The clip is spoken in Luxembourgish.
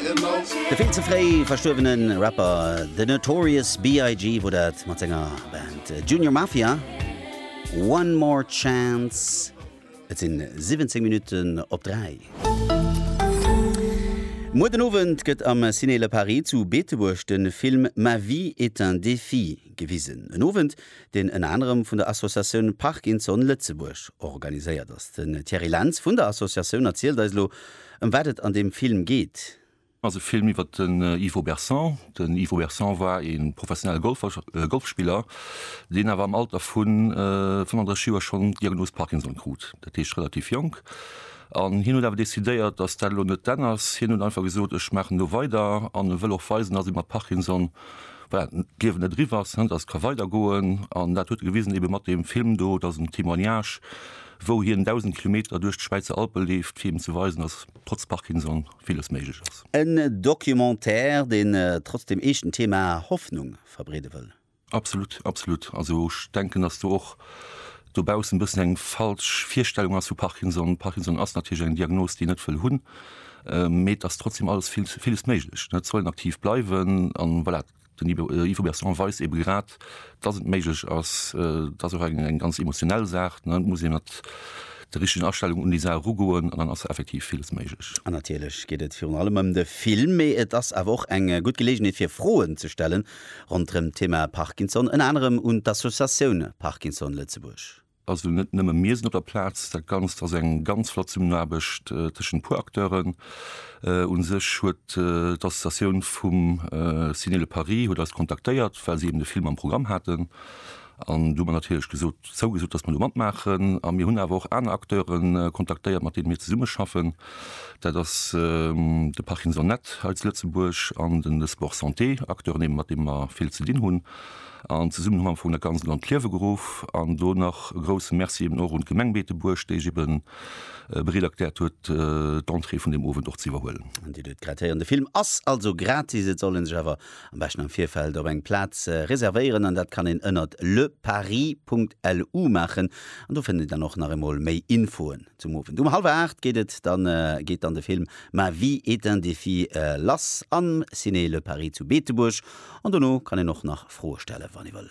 De vill ze fréi verstuerwene Rapper The Notorious BIG wor dat mat senger Band Junior Mafia. One More Chance, et sinn 17 Minutten op 3. Muer den Owend gëtt am Ciné Le Paris zu Beetebuerg de Film Ma vie est un défi gewisen. En Owend, deen ënner anerem vun der Associatioun Parkinson Lëtzebuerg organiséiert ass. Den Thierry Lentz vun der Associatioun erzielt eis elo, Ëm wat et an deem Film geet? Ass e Film iwwer den Ivo Berson. Den Ivo Berson war ee professionelle Golfer, Golfspiller, deen awer am Alter vu 35 Joer schonn d'Diagnos Parkinson krut, dat heescht relativ jonk. An hien huet awer decidéiert, datt dat elo net d'Enn ass. Hien huet einfach gesot, ech maachen elo weider an e wëll och weisen, datt ee mat Parkinson, voilà, d'Liewen net eriwwer ass, datt et ka weidergoen. An dat huet e gewisen ebe mat deem Film do. Dat ass en Témoignage. wou hien 1.000 Kilometer duerch d'Schwäizer Alpe leeft, fir eben ze weisen, dass trotz Parkinson villes méiglech ass. En Documentaire, deen trotz dem eeschten Thema Hoffnung verbreede wëll. Absolut, absolut. Also ech denken, dass do och dobaussen e bëssen eng falsch Virstellung ass vu Parkinson. Parkinson ass natierlech eng Diagnos, déi een net wëll hunn, mee et ass trotzdem alles, villes méiglech. D'Zellen aktiv bleiwen an voilà. Den Yvo Berson weist eebe grad, dass et méiglech ass. Et ass och eng ganz emotionell Saach. Et muss ee mat der richtigen Astellung un déi Saach erugoen an dann ass effektiv villes méiglech. An natierlech geet et virun allem ëm de Film, mee et ass awer och eng gutt Geleegenheet fir Froen ze stellen ronderëm d'Thema Parkinson, ënner anerem un d'Associatioun Parkinson Lëtzebuerg. Also net nëmme mir sinn op der Plaz, dat Ganzt ass eng ganz flott Zesummenaarbecht tëschent e puer Acteuren. U sech huet d'Associatioun vum Ciné Le Paris huet eis kontaktéiert, well se eben de Film am Programm haten. An do hu mer natierlech gesot, zougesot, datt mer do matmaachen. A mir hunn awer och aner Acteure kontaktéiert, mat deene mir zesummeschaffen. Dat ass de Parkinsonet hei zu Lëtzebuerg an de Sport Santé, Acteuren eben, mat deene mer vill ze dinn hunn. an Zesummenhang am Fong dat Ganzt an d'Liewe geruff. An do nach e grousse Merci eben och un d'Gemeng Beetebuerg, déi sech ebe bereet erkläert huet, d'Entrée vun deem Owend och ze iwwerhuelen. An Dir duet grad héieren, de Film ass also gratis. Et soll een sech awer am beschten am Virfeld op eng Plaz reservéieren an dat kann een ënnert leparis.lu maachen. An do fënnt een dann och nach eemol méi Infoen zum Owend. Um hallwer 8 geet et dann, geet dann de Film Ma vie est un défi lass am Ciné Le Paris zu Beetebuerg an dono kann een och nach Froe stelle wann ee wëll.